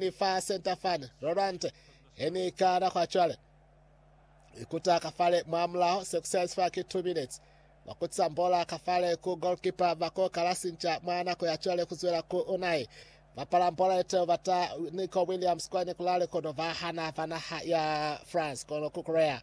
Ni fa center fani, Rolante, he ni ikala kwa cwale. Ikuta ka fale mwamulaho, se ku size fa ki two minutes. Ba kutisa mbola ka fale ku goalkeeper, ba ko kala sinca mwa nako ya cwale ku zwela ku Unai. Bapala mbola ye teo bata Nico Williams kwani ku la lekodo ba hana ba naha ya France kono ku Korea.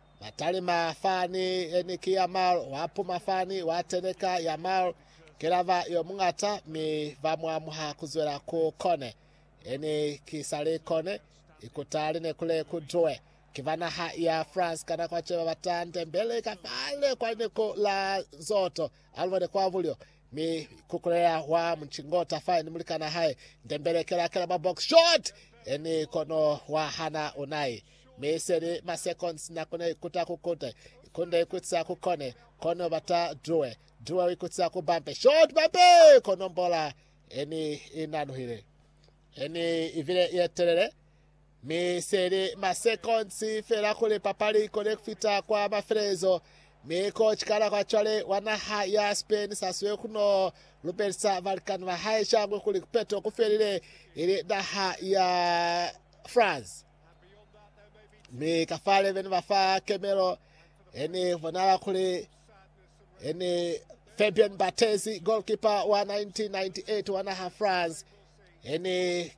Matalima fani yeni ki ya malo, wa puma fani, wa teneka ya malo, kelava yo mungata, mi va mu amuha ku zwela ku kone. Yeni ki sa li kone, ikuta li ne ku le ku duwe. Ki ba naha ya France ka nako ace ba bata Ndembele ka fale kwa lineko la Zoto, Almond kwa bulyo, mi kukulela wa Mchingota fa ni mulikana hae. Ndembele kela kela ba box shot, yeni kono wa hana unai. Mi seli ma seconds na kona ikuta ku kute. Ikunde ikutisa ku kone. Kono bata due. Due ikutisa ku bampe. Shot bampe! Kono mbola eni inanuhile. Eni ivile yetelele. Mi seli ma seconds fela kuli papali ikone kufita kwa mafelelezo. Mi ko chikala kwa chwale wa naha ya Spain saswe kuno lubelisa balikani ba hae shangwe kuli kupeto kufelile ili naha ya France. mi kafale bene ba fa kemelo ene bonala kuli ene Fabien Barthez goalkeeper wa 1998 wa naha France ene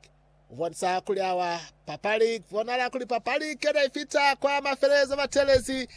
ubonisa kuli awa papali bonala kuli papali kele ifita kwa mafelezo batelezi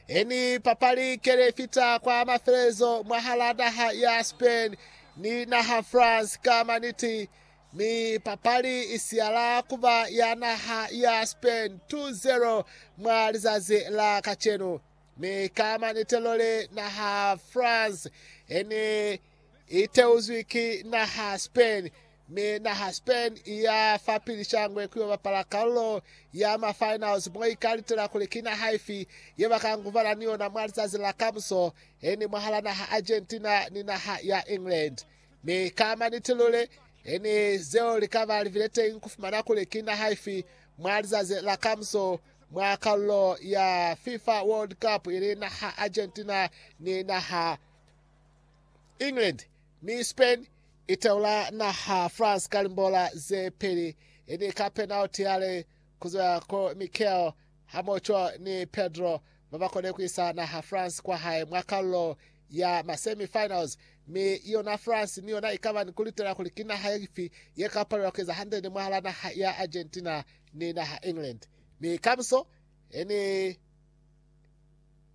eni papali kele ifita kwa mafelezo mwahala naha ya Spain ni naha France kama niti Mi papali i siyala kuba ya naha ya Spain 2-0 mwa lizazi la kacenu. Mi ka manite loli naha France ene i teuzwi ki naha Spain, mi naha Spain i ya fa pili shangwe kuyo bapala kalulo ya ma finals mo ika litela kuli ki naha ifi ye ba ka ngubana ni yona mwa lizazi la kamuso, ene mwahala naha Argentina ni naha ya England. Mi ka maniti luli, ni zeo li ka ba libile teñi ku fumana kuli ki naha ifi mwa lizazi la kamuso mwa kalulo ya FIFA World Cup, ili naha Argentina ni naha England. Mi Spain i teula naha France ka limbola ze peli, ni ka penalty ya li ku zwa ku Mikel hamoco ni Pedro ba ba kone ku isa naha France kwa hae mwa kalulo ya ma semi finals, mi yona France ni yona ikaba ni kulitela kuli ki naha ifi ye ka palelwa kueza hande ni mwahala naha ya Argentina ni naha England. Mi kamuso e ni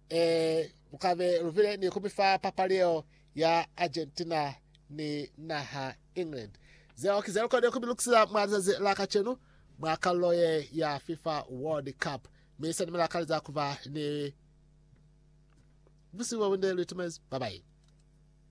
e mukabe lubile ni kumifa papali yeo ya Argentina ni naha England. Zeo ki zelukonile kumilukisisa mwa lizazi la kacenu mwa kalulo ye ya FIFA World Cup, mi sena mila kaleza kuba ni Busihu bwa bunde Luitimazi, Babayi.